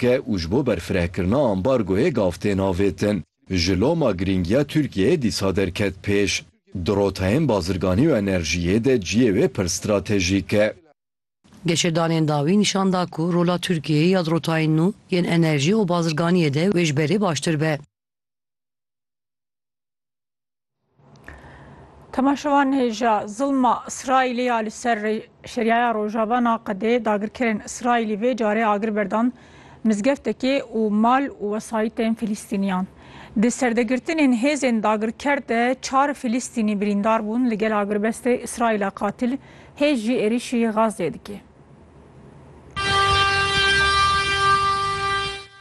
ke û ji bo berfirehkirina ambargoyê gav tên avêtin. Ji loma girîngiya Tirkiyeyê dîsa derket pêş. Di rotayên bazirganî û enerjiyê de ciyê wê pir stratejîk e. Geşedanên dawî nîşan da ku rola Tirkiyeyê ya di rotayên nû yên enerjî û bazirganiyê de wê ji berê baştir be. Temaşevan hêja zilma Îsraîlê ya li ser Şerîaya Rojava naqedê, dagirkerên Îsraîlî vê carê agir berdan mizgeftekê û mal û wesayîtên Filîstîniyan. Di serdegirtinên hêzên dagirker de çar Filîstînî birîndar bûn, li gel agirbestê Îsraîla qatil hêj jî êrîşî Gazeyê dike.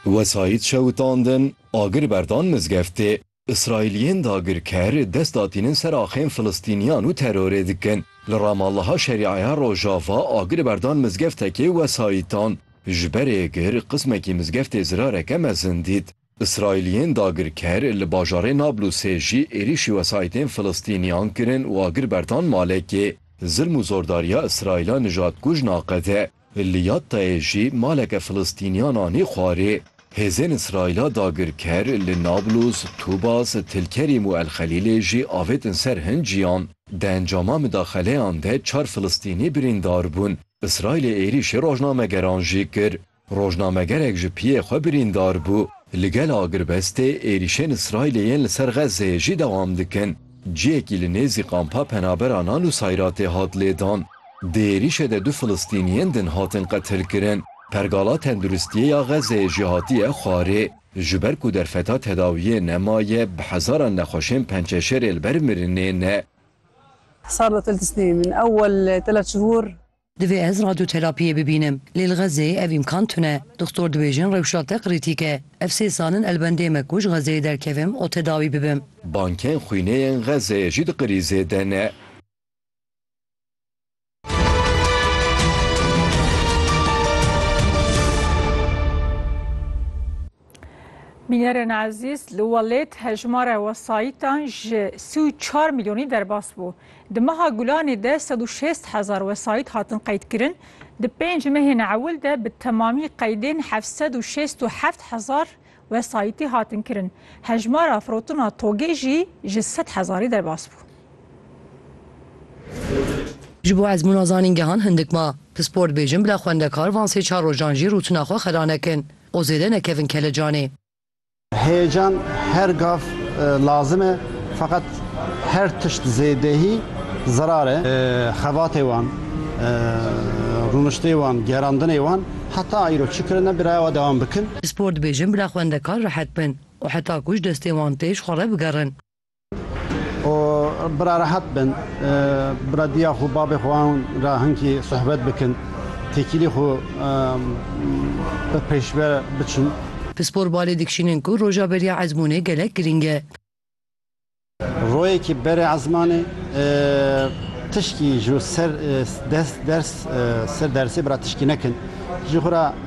Wesayît şewitandin, agir berdan mizgeftê. Îsraîliyên dagirker dest datînin ser axên filistîniyan û terorê dikin. Li Ramallaha Şerîaya Rojava agir berdan mizgeftekê wesayîtan. Ji berê gir qismekî mizgeftê zirareke mezin dît. Îsraîliyên dagirker li bajarê Nablusê jî êrîşî wesayîtên Filistîniyan kirin û agir berdan malekê. Zilm û zordariya Îsraîla nijadkuj naqede. Li Yattayê jî maleke Filistîniyan anî xwarê. Hêzên Îsraîla dagirker li Nablus, Tubas, Tilkerîm û Elxelîlê jî avêtin ser hin ciyan. Di encama midaxeleyan de çar Filistînî birîndar bûn. Îsraîlê êrîşî rojnamegeran jî kir. Rojnamegerek ji piyê xwe birîndar bû. Li gel agirbestê êrîşên Îsraîlê yên li ser Xezzeyê jî dewam dikin. Cihekî li nêzî qampa penaberan a Nusayratê hat lêdan. Di êrîşê de du filistîniyên din hatin qetilkirin. Pergala tenduristiyê ya Xezzeyê jî hatiye xwarê. Ji ber ku derfeta tedawiyê nemaye, bi hezaran nexweşên pençeşêrê li ber mirinê ne. Divê ez radyoterapiyê bibînim. Lê li Xezeyê ev îmkan tune. Doxtor dibêjin rewşa te krîtîk e. Ev sê sal in elbendê me ku ji Xezeyê derkevim û tedawî bibim. Bankên xwînê yên Xezeyê jî di krîzê de ne. Bînerên ezîz, li welêt hejmara wesayîtan ji sî û çar milyonî derbas bû. Di meha Gulanê de sed û şêst hezar wesayît hatin qeydkirin, di pênc mehên ewil de bi temamî qeydên heft sed û şêst û heft hezar wesayîtî hatin kirin. Hejmara firotina togê jî ji sed hezarî derbas bû. Ji bo ezmûna zanîngehan hindik ma. Pispor dibêjin bila xwendekar van sê çar rojan jî rûtina xwe xera nekin. û zêde nekevin kelecanê. Heyecan her gav lazim e feqet her tişt zêdehî zerar e. Xebatê wan, rûniştê wan, gerandinê wan heta îro çi kirine bi raya we dewam bikin. Spor dibêjin bila xwendekar rehet bin û heta ku ji destê wan têj xwe re bigerin. û bira rehet bin, bira diya xwe, babê xwe an re hinkî sohbet bikin, têkilî xwe bi pêşve biçin. Pispor balê dikişînin ku roja beriya ezmûnê gelek girîng e. Royekî berê ezmanê tişkî ji ser ders ser dersê bira tişkî nekin jî xwe re.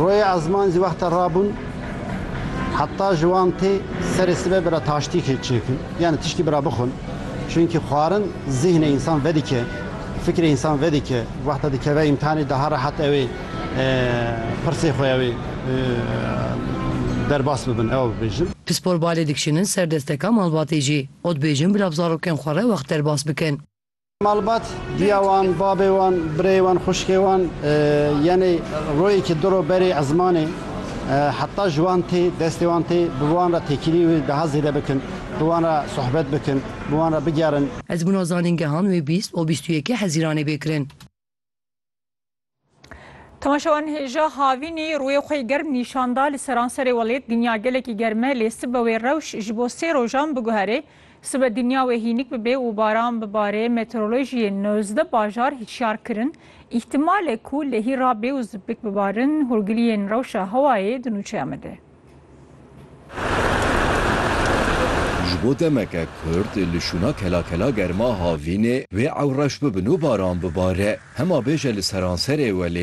Royê ezman zî wexta rabûn heta ji wan tê serê sibe bira taştîkê çêkin yanî tiştî bira bixwin. Çunkî xwarin zîhnê însan vedike, fikrê însan vedike. Wexta dikeve îmtihanê daha rehat ew ê pirsê xwe ew ê derbas bibin ew bibêjin. Pispor balê dikişînin ser desteka malbatê jî. Ot bêjin bila bi zarokên xwe re wext derbas bikin. Malbat diya wan, babê wan, birê wan, xuşkê wan yenê royekî di ro berê ezmanê heta ji wan tê destê wan tê bi wan re têkilî wê daha zêde bikin, bi wan re sohbet bikin, bi wan re bigerin. Ez bûna zanîngehan wê bîst û bîst û yekê Hezîranê bê kirin. Temaşewan hêja havînî rûyê xwe yê germ nîşan da li seranserê welêt dinya gelekî germ e lê sibe wê rewş ji bo sê rojan biguherê. Sibe dinya wê hînik bibe û baran bibarê meteorolojiyên nozdeh bajar hişyar kirin îhtimal e ku lehî rabe û zipik bibarin hûrgiliyên rewşa hewayê di nûçeya me de. Ji bo demeke kurd li şûna kelakela germa havînê wê ew reş bibin û baran bibare. Hema bêje li seranserê welê